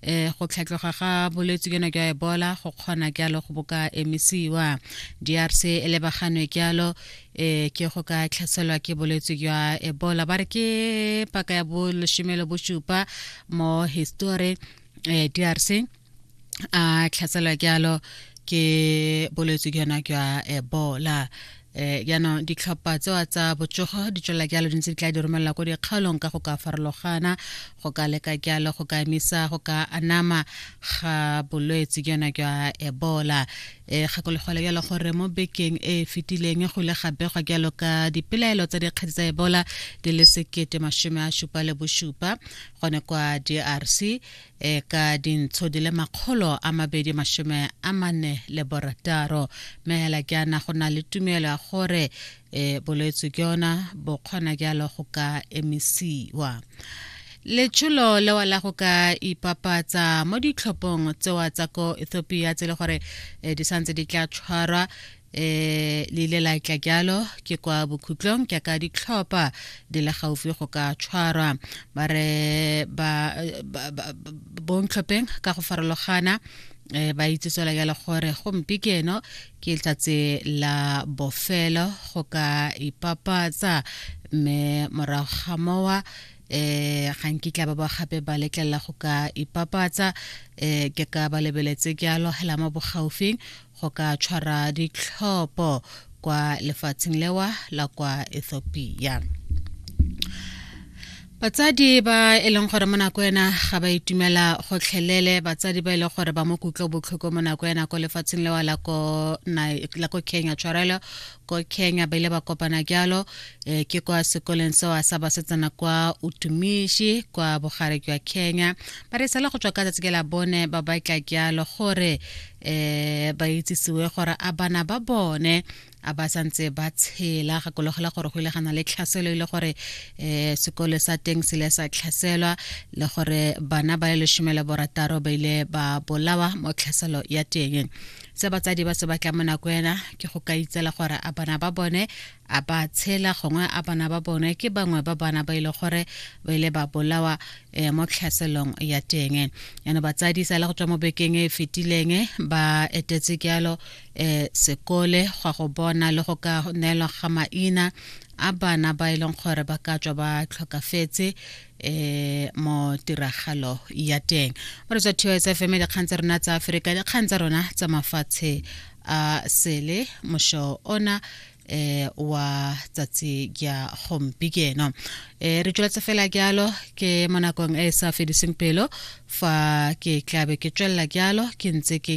eh go tlhatloga ga bolwetse jona jwa ebola go kgona jalo go boka emisiwa drc e lebaganwe jalo eh ke go ka tlhaselwa ke bolwetse jwa ebola ba re ke paka ya boleshome le bosupa mo history eh drc a tlhaselwa jalo ke bolwetse jona jwa ebola eh jaanong ditlhopha tseo tsa botsogo di tswela jalo di ntse di tla di romelela ko dikgaolong ka go ka farologana go ka leka jalo go ka emisa go ka anama ga bolwetse jona jwa ebola e gakologole jalo gore mo bekeng e e fetileng go ile ga begwa jalo ka dipelaelo tsa dikgetse tsa ebola di le sekete masome a supa le bosupa gone kwa drc e ka dintsho di le makgolo a mabedi masome a mane le borataro mme hela ke ana go na le tumelo ya gore e bolwetse ke yona bo kgona jalo go ka emisiwa letsholo lewa la go ka ipapatsa mo ditlhophong tsewa tsa ko ethiopia tse le gore e, di santse di tla tshwarwa eh le ile la tla jalo ke kwa bokhutlong ke ka ditlhopha di le gaufi go ka tshwarwa ba re ba bontlhopheng ka go farologana eh, ba itse tswela jalo gore gompi ke eno ke letsatsi la bofelo go ka ipapatsa mme morago ga mowa eh ga nkitla ba ba gape ba letlelela go ka ipapatsa eh ke ka ba lebeletse jalo hela mo bogaufing go ka tshwara ditlhopho kwa lefatsheng lewa la kwa ethiopia batsadi ba e leng gore mo nako ena ga ba itumela gotlhelele batsadi ba e leng gore ba mo kutlo botlhoko mo nako ena ko lefatsheng lewa la ko kenya tshwarelo ko kenya ba ile ba kopana jalo e, ke kwa sekoleng sewa sa basetsana kwa utumishi kwa bogare jwa kenya ba re sala go tswa ka tsatsi ke la bone ba batla jalo gore eh ba itsisiwe gore a bana ba bone a ba santse ba tshela gakologela gore go ile gana le tlhaselo ile e gore eh sekole sa teng se le sa tlhaselwa le gore bana ba le leshome le borataro ba ile ba bolawa mo tlhaselo ya teng se batsadi ba se batla mo nako ena ke go ka itsela gore a bana ba bone a ba tshela gongwe a bana ba bone ke bangwe ba bana ba ile gore ba ile ba bolawa um mo tlhaselong ya teng yana batsadi sa le go tswa mo bekeng e, e fetileng ba etetse jalo um sekole gwa go bona le go ka neelwa ga maina a bana ba e leng gore ba ka tswa ba tlhokafetse eh mo tiragalo ya teng mo re tswa TOS FM dikgang tsa rona tsa Afrika dikgang tsa rona tsa mafatshe a sele mosho ona eh wa tsatsi ya gompieno eh re tsweletse fela jalo ke mo nakong e e sa fediseng pelo fa ke tlabe ke tswelela jalo ke ntse ke